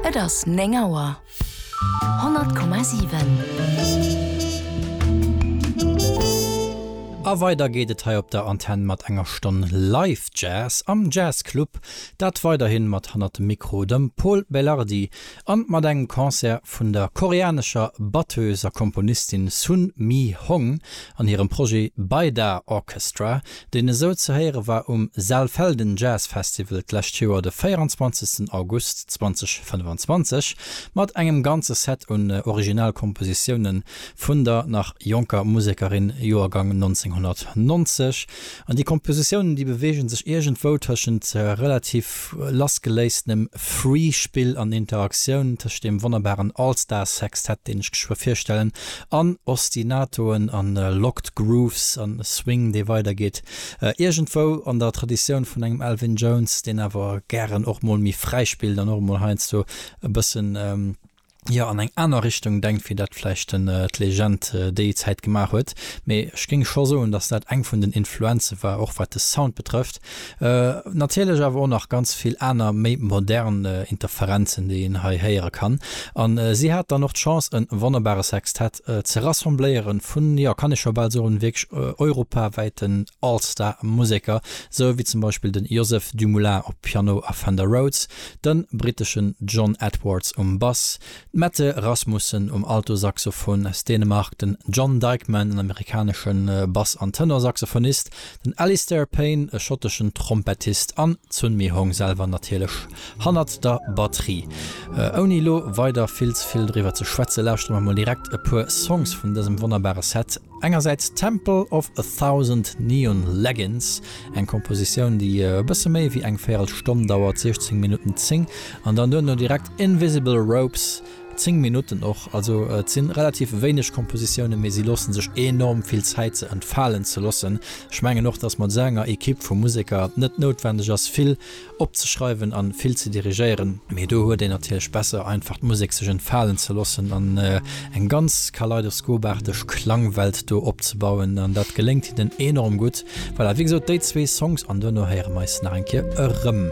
Et ass 9 Auer. 100,7. A weider geet et hei op der Antenn mat enger Stonn Live Jazz am Jazz Club. Dat weiderhi mat hannert dem Mikro dem Pol Belardi a mat engem Concert vun der koreanescher Batteuse a Komponistin Sun Mi Hong an hirem Projet Baida Orchestra, deen esou ze héiere war um Saalfelden Jazz Festival d'lescht Joer, de 24 August 2025, mat engem ganze Set un Originalkompositioune vun der nach jonker Musekerin, Joergang 1990. An déi Kompositiounen, déi beweege sech iergendwou tëschent relativ. lassgeléisstenem Free Spill an Interaktioun tëscht deem wonnerbaren All Stars Sextett, deen ech geschwë virstellen, an Ostinatoen an Locked Grooves an e Swing dee weider geet, iergendwou an der Traditioun vun engem Elvin Jones, deen awer gären och mol méi fräi spillt an och emol heiansdo e bëssen. jo an eng aner Richtung denkt wéi dat vläicht d'Legend déi Zäit gemaach huet. Mee ech géing scho soen, dass dat eng vun den Influenze war, och wat de Sound betrëfft. Natierlech awer och nach ganz vill aner méi modern Interferenzen, déi een hei héiere kann. A si hat dann och d'Chance e wonnerbare Sextett ze rassembléieren vun, jo kann ee scho bal soen, wierklech europawäiten All-Star Museker, sou wéi zum Beispill de Joseph Dumoulin op Piano a Fender Rhodes, den britteschen John Edwards um Bass, d'Mette Rasmussen um Altosaxophon aus Dänemark, den John Dikeman, en amerikanesche Bass an Tenorsaxophonist, den Alistair Payne, e schotteschen Trompettist, an d'Sunmi Hong selwer natierlech hannert der Batterie. Ouni elo weider vill ze vill driwwer ze schwätzen, lauschtere mer mol direkt e puer Songs vun dësem wonnerbare Set. Engersäits Temple of a Thousand Neon Leggings, Eng Kompositioun, déi e bësse méi wéi eng véierel Stonn dauert, 16 Minutten 10, an dann duerno direkt Invisible Ropes, 10 Minutten och. Also et si relativ wéineg Kompositiounen, mee si loosse sech enorm vill Zäit, se entfalen ze loossen. Ech mengen och, dass mat esou enger Ekipp vu Museker et net noutwendeg ass, vill opzeschreiwen an vill ze dirigéieren, mee do huet een natierlech besser einfach d'Musek sech entfalen ze lossen an eng ganz kaleidoskoparteg Klangwelt do opzebauen an dat geléngt hinnen enorm gutt. Voilà, wéi gesot, déi zwee Songs an duerno héiere mer eis nach eng Kéier erëm.